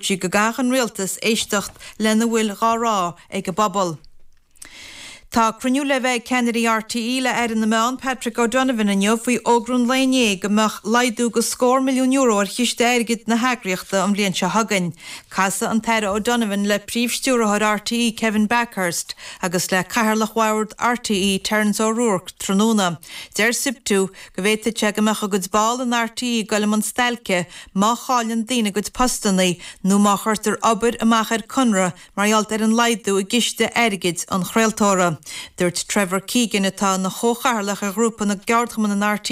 sí go gcaithfeadh an Rialtas éisteacht lena bhfuil dhá rá ag an bpobal. Tá cruinniú le bheith ag ceannairí RTÉ le hAire na Meán, Patrick O'Donovan inniu faoi fhógra an lae inné go mbeadh laghdú go scór milliún euro ar chiste airgid na heagraíochta an bhliain seo chugainn. Casfaidh an tAire O'Donovan le Príomh-Stiúrthóir RTÉ Kevin Bakhurst agus le Cathaoirleach Bhoird RTÉ Terence O'Rourke tráthnóna. Deir Siptu, go bhféadfadh sé go mbeadh a gcuid ball in RT ag goil amach ar stailce má chailleann daoine a gcuid postannaí nó má chuirtear obair amach ar conradh mar gheall ar an laghdú i gciste airgid an chraoltóra. Dúirt Trevor Keegan, atá ina chomhchathaoirleach ar Ghrúpa na gCeardchumann in RT,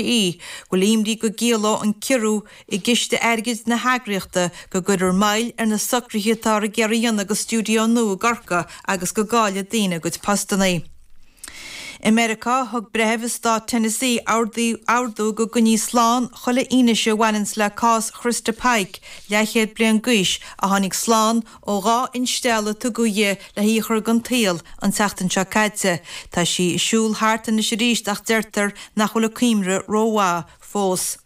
go bhfuil imní go gciallódh an ciorrú i gciste airgid na heagraíochta go gcuirfear moill ar na socruithe atá ar na bearta a dhéanamh do stiúideo nua i gCorcaigh agus go gcaillfeadh daoine a gcuid postannaí. I Meiriceá, thug breitheamh i Stát Tennessee ordú go gcoinneofaí slán chuile fhianaise a bhaineanns le cás Christa Pike, leathchéad bliain d'aois, a tháinig slán ó dhá instealladh a tugadh dhi le hí a chur den tsaol an tseachtain seo caite. Tá sí ag siúl thart anois aríst ach deirtear nach bhfuil a cuimhne rómhaith fós.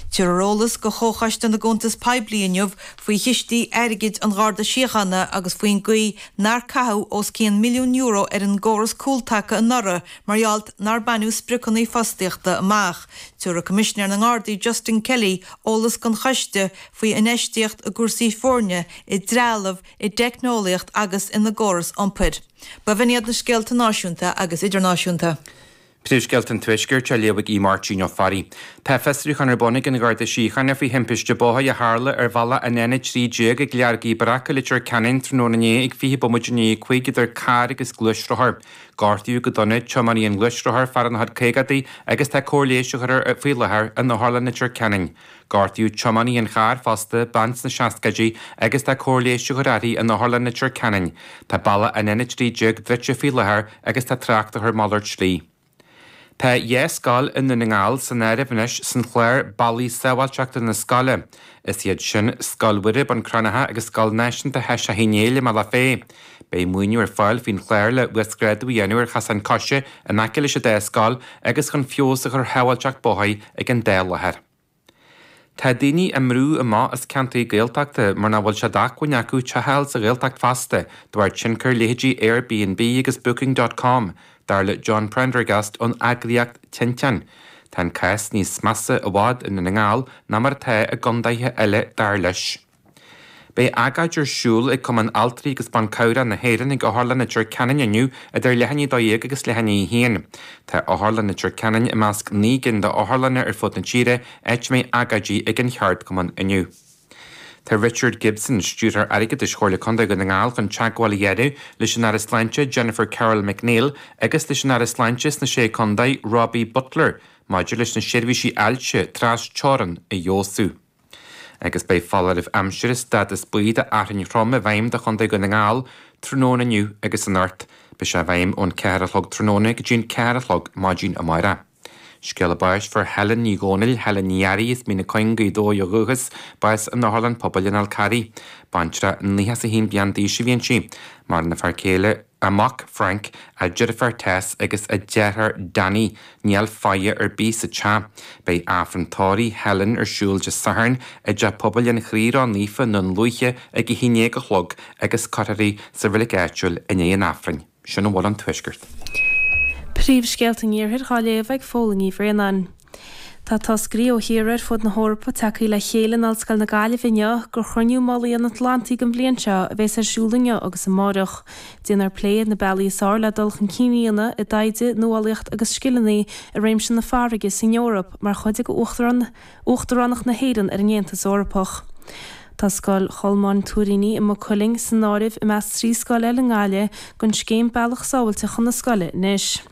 Tabharfar eolas do Chomhchoiste na gCuntas Poiblí inniu faoi chistí airgid an Gharda Síochána agus faoin gcaoi nár caitheadh os cionn milliún euro ar an gcóras cúltaca anuraidh mar gheall nár baineadh spriocanna fostaíochta amach. Tiúrfaidh Coimisinéir na nGardaí Justin Kelly eolas don choiste faoi infheistíocht i gcúrsaí foirne, i dtrealamh, i dteicneolaíocht agus ina gcóras iompair. B'in iad na scéalta náisiúnta agus idirnáisiúnta. Príomhscéalta an Tuaiscirt á léamh ag Aodh Máirtín Ó Fearraigh. Tá fiosrúchán ar bun ag an Gharda Síochána faoi thimpiste bóthair a tharla ar bhealach an N13 ag Lorga Bhreac, Leitir Ceanainn tráthnóna inné ag 20 bomaite i ndiaidh a cúig idir carr agus gluaisrothar. Gortaíodh go dona tiománaí an ghluaisrothair, fear ina chuid caogaidí agus tá cóir leighis á chur air faoi láthair in Otharlann Leitir Ceanainn. Gortaíodh tiománaí an chairr fosta, bean sna seascaidí, agus tá cóir leighis á chur uirthi in Otharlann Leitir Ceanainn. Tá bealach an N13 druidte faoi láthair agus tá trácht á chur malairt slí. Tá dhá scoil i nDún na nGall san áireamh anois san chlár Bealaí Sábháilte chun na Scoile. Is iad sin, Scoil Mhuire, Bun Cranncha, agus Scoil Náisiúnta Sheiseadh Uí Néill i mBealach Féich. Beidh maoiniú ar fáil faoin chlár le huasghrádú a dhéanamh ar chosáin coise in aice leis an dá scoil agus chun feabhas a chur ar shábháilteacht bóthair ag an dá láthair. Tá daoine á mbrú amach as ceantair Gaeltachta mar nach bhfuil sé d'acmhainn acu teach a fháil sa Ghaeltacht feasta, de bharr tionchar leithéidí Airbnb agus Booking dot com, dar le John Prendergast ón eagraíocht Tinteán. Tá an cás níos measa i bhfad i nDún na nGall ná mar atá i gcondaetha eile, dar leis. Beidh agóid ar siúl ag Cumann Altraí agus Ban Cabhrach na hÉireann ag Otharlann Leitir Ceanainn inniu idir leath i ndiaidh a dó dhéag agus leath i ndiaidh a haon. Tá Otharlann Leitir Ceanainn i measc naoi gcinn d'otharlanna ar fud na tíre áit a mbeidh agóidí ag an cheardchumann inniu. Tá Richard Gibson, Stiúrthóir Airgeadais Chomhairle Condae Dhún na nGall chun teagmháil a dhéanamh leis an Aire Sláinte Jennifer Carroll MacNeill agus leis an Aire Sláinte sna Sé Condae Robbie Butler maidir leis na seirbhísí ailse trasteorann a fheabhsú. agus beidh foláireamh aimsire stádas buí do fhearthainn throm i bhfeidhm do Chontae Dhún na nGall tráthnóna inniu agus anocht beidh sé i bhfeidhm ón ceathair a chlog tráthnóna go dtí an ceathair a chlog maidín amárach. Scéala báis fuair Helen Ní Dhomhnaill, Helen Ní Fhearraigh, as Mín na Cuinge, Gaoth Dobhair ó dhúchas, bás in Otharlann Pobail an Fháil Charraigh. Baintreach 91 bliain d'aois a bhí inti. Maireann a fear céile. a mac Frank, a deirfiúr Tess agus a deartháir Danny, níl faire ar bith sa teach. Beidh Aifreann tórraimh Helen ar siúl Dé Sathairn i dTeach Pobail an Chroí Ró Naofa i nDún Lúiche ag a haon déag a chlog agus cuirfear í sa reilig áitiúil i ndiaidh an Aifrinn. Sin a bhfuil ón Tuaisceart. Príomhscéalta an Iarthair dhá léamh ag Fódhla Ní Bhraonáin. Tá toscairí ó thíortha ar fud na hEorpa tagtha le chéile in Ollscoil na Gaillimhe inniu do Chruinniú Mullaigh an Atlantaigh don bhliain seo a bheas ar siúl inniu agus amárach. Déanfar plé ar na bealaí is fearr le dul chun cinn a dhéanamh i dtaighde, nuálaíocht agus scileanna i réimse na farraige san Eoraip mar chuid de Uachtaránacht na hÉireann ar an Aontas Eorpach. Tá Scoil Cholmáin Tuairíní i Maigh Cuilinn san áireamh i measc trí scoil eile i nGaillimh den scéim Bealach Sábháilte Chun na Scoile anois.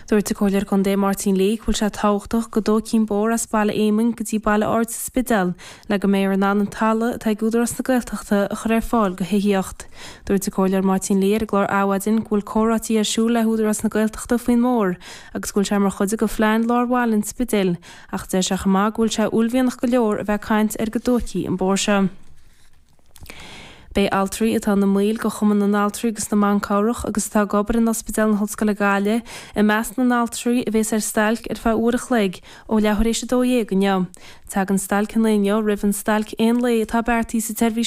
Dúirt an Comhairleoir Contae Máirtín Lee go bhfuil sé tábhachtach go dtógfaí an bóthar as Baile Éamoinn go dtí Baile Ard sa Spidéal le go mbeifear in ann an talamh atá ag Údarás na Gaeltachta a chur ar fáil go thithíocht. Dúirt an Comhairleoir Máirtín Lee ar an gclár Adhmhaidin go bhfuil comhráití ar siúl le hÚdarás na Gaeltachta faoin mbóthar agus go bhfuil sé mar chuid de phlean lár bhaile an Spidéil ach deir sé chomh maith go bhfuil sé uaillmhianach go leor a bheith ag caint air go dtógfaí an bóthar seo. Beidh altraí atá ina mbaill de Chumann na nAltraí agus na mBan Cabhrach agus atá ag obair in Ospidéal na hOllscoile Gaillimh i measc na n-altraí a bhéas ar stailc ar feadh uair a chloig ó leath tar éis a dó dhéag inniu. Tagann stailc an lae inniu roimh an stailc aon lae atá beartaithe sa tseirbhís